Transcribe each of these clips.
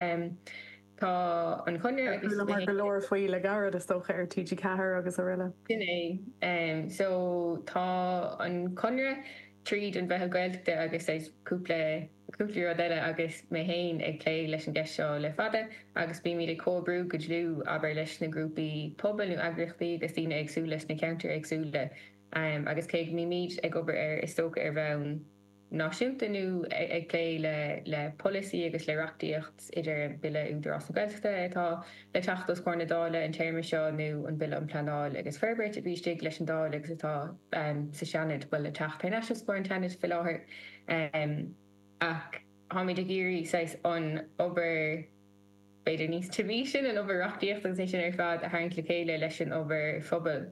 Tá an Conradh ag súil le mar go leor faoi le gairid, is dócha, ar TG Ceathair agus aroile. Sin é. So tá an Conradh tríd an Mheitheal Gaeltachta agus saghas cúpla, cúpla rud eile agus mé fhéin ag plé leis an gceist seo le fada agus bímid ag comhoibriú go dlúth, abair, leis na grúpaí pobail nó eagraíochtaí agus daoine éagsúla sna ceantair éagsúla agus cé go mbímid ag obair air, is dócha, ar bhonn. náisiúnta nó ag plé le polasaí agus le reachtaíocht idir an Bille Údarás na Gaeltachta atá le teacht os comhair na Dála an téarma seo nó an Bille um Pleanáil agus Forbairt a bhí istigh leis an Dáil agus atá sa Seanad bhuel le teacht thar n-ais os comhair an tSeanaid faoi láthair ach táimid ag iarraidh saghas an obair b'fhéidir níos tirime sin an obair reachtaíocht agus é sin ar fad a tharraingt le chéile leis an obair phobail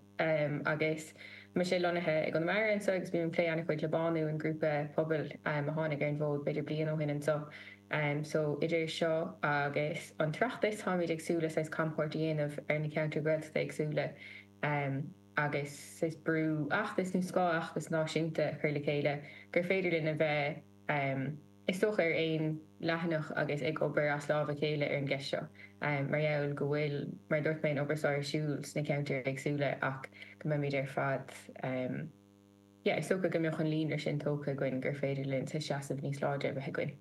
agus mise lonnaithe i gConamara anseo agus bím ag plé an-chuid le Bánú an grúpa pobail a tháinig ar an bhfód b'fhéidir bliain ó shin anseo so idir seo agus an tOireachtas táimid ag súil le saghas camchuairt a dhéanamh ar na ceantair Ghaeltachta éagsúla agus saghas bratfheachtas nó scáthfheachtas náisiúnta a chur le chéile gur féidir linn a bheith Is dócha ar aon leathanach agus ag obair as lámh a chéile ar an gceist seo mar gheall go bhfuil, mar a dúirt mé, an obair seo ar siúl sna ceantair éagsúla ach go mbeimid ar fad, yeah, is dócha go mbeadh an líonra sin tógtha againn gur féidir linn saghas seasamh níos láidre a bheith againn.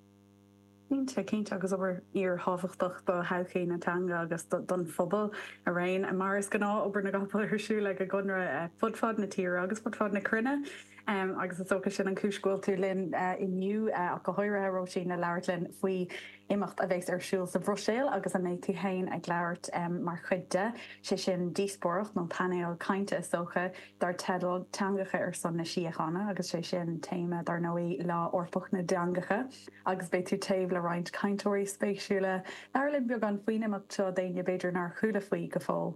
Cinnte, cinnte agus obair fhíorthábhachtach do thodhchaí na teanga agus don phobal araon. Mar is gnáth, obair na gcapall ar siúl ag an gConradh fud fad na tíre agus fud fad na cruinne. agus is dócha sin an cúis go bhfuil tú linn inniu ach go háirithe Róisín le labhairt linn faoi imeacht a bheas ar siúl sa Bhruiséil agus a mbeidh tú féin ag labhairt mar chuid de, sé sin díospóireacht nó painéal cainte is dócha, dar teideal 'Teangacha ar son na Síochána' agus sé sin téama dar ndóigh Lá Eorpach na dTeangacha agus beidh tú taobh le roinnt cainteoirí spéisiúla. Labhair linn beagán faoin imeacht seo d'éinne b'fhéidir nár chuala faoi go fóill.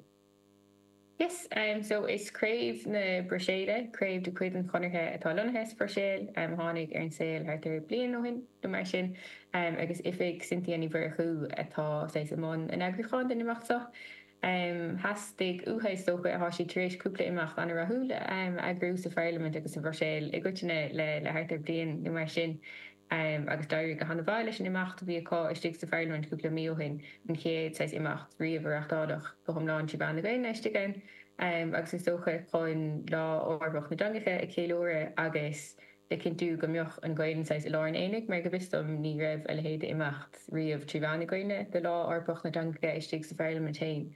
Yes, so is craobh na Bruiséile, craobh de chuid an Chonartha atá lonnaithe sa Bhruiséil, a tháinig ar an saol thart ar bliain ó shin nó mar sin agus oifig Cynthia Ní Mhurchú atá saghas i mbun an eagrúcháin den imeacht seo. Theastaigh uatha is dócha, tá siad tar éis cúpla imeacht an-rathúil a eagrú sa Pharlaimint agus sa Bhruiséil i gcoitinne le thart ar bliain nó mar sin, agus d'éirigh go hana mhaith leis an imeacht a bhí acu istigh sa Pharlaimint cúpla mí ó shin, an chéad saghas imeacht riamh a reachtáladh go hiomlán trí mheán na Gaelainne istigh ann agus is dócha chun Lá Eorpach na dTeangacha a cheiliúradh agus le cinntiú go mbeadh an Ghaelainn saghas i lár an aonaigh mar go bhfios dom ní raibh a leithéid de imeacht riamh trí mheán na Gaelainne do Lá Eorpach na dTeangacha istigh sa Pharlaimint féin.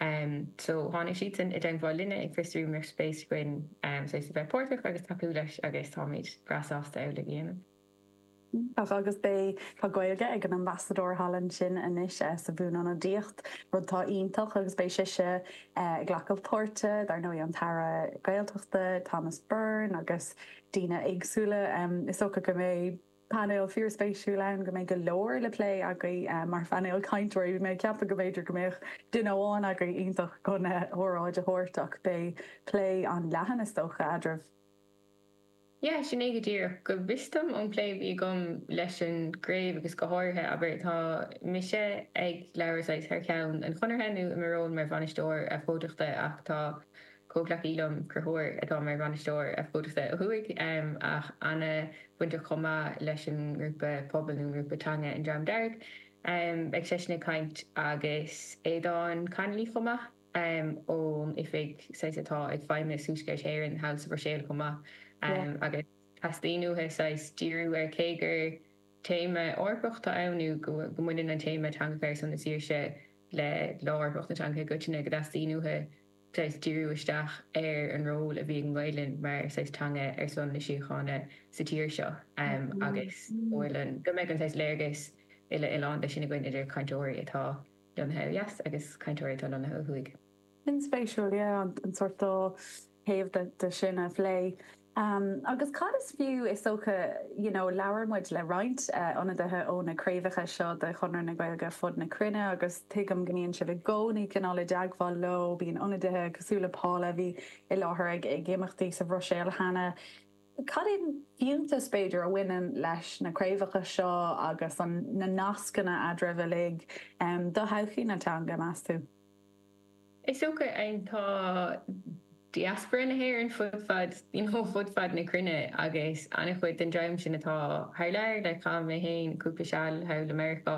em so tháinig siadsan i dteagmháil linne ag fiosrú mbeadh spéis againn em saghas a bheith páirteach agus tacú leis agus táimid breá sásta amhlaidh a dhéanamh. Agus beidh tá Gaeilge ag an Ambasadóir thall ansin anois eh sa bhuanionadaíocht, rud atá iontach agus beidh sise eh ag glacadh páirte dar ndóigh an tAire Gaeltachta Thomas Byrne agus daoine éagsúla em is dócha go mbeidh, Painéal fíor spéisiúil ann go mbeidh go leor le plé agaibh mar phainéal cainteoirí. Bhí mé ag ceapadh go mb'fhéidir go mbeadh duine amháin agaibh iontach chun óráid a thabhairt ach beidh plé an-leathan is dócha eadraibh. Yeah, sin é go díreach. Go bhfios dom ón bplé a bhí agam leis an gcraobh agus go háirithe, abair, tá mise ag labhairt saghas thar cheann an Chonartha nó i mo ról mar bhainisteoir abhcóideachta ach tá, Comhghleacaí liom, Conchúr, atá mar bhainisteoir abhcóideachta ó Thuaidh, ach an-bhainteach chomh maith leis an ngrúpa pobail nó an ngrúpa teanga An Dream Dearg. Beidh seisean ag caint agus Aodán Connolly chomh maith, ón oifig saghas atá ag Feidhmeannas Thuaisceart Éireann thall sa Bhruiséil chomh maith, agus teastaíonn uathu saghas díriú ar cé gur téama Eorpach tá ann nó go mbaineann an téama Teangacha ar son na Saoirse le Lá Eorpach na Teangacha i gcoitinne, go dteastaíonn uathu, saghas díriú isteach ar an ról a bhí ag an nGaelainn mar saghas teanga ar son na síochána sa tír seo agus ar ndóigh go mbeadh an saghas léargas uile-oileánda sin againn idir cainteoirí atá lonnaithe ó dheas agus cainteoirí atá lonnaithe ó thuaidh. Sin spéisiúil, yeah, an sórt dá thaobh de sin a phlé. Um, agus cad is fiú, is dócha, you know, labhair muid le roinnt, eh, ionadaithe ó na craobhacha seo de Chonradh na Gaeilge ar fud na cruinne agus tuigim go mbíonn sibh i gcónaí cineál i dteagmháil leo, bíonn ionadaithe cosúil le Paula a bhí i láthair ag, ag imeachtaí sa Bhruiséil cheana. Cad é an fiúntas, b'fhéidir, a bhaineann leis na craobhacha seo agus an, na nascanna eadraibh uilig, em, do thodhchaí na teanga, meas tú? Is dócha tá diaspora na hÉireann fud fad, you know fud fad na cruinne agus an-chuid den dream sin atá thar lear like chaith mé féin cúpla seal thall i Meiriceá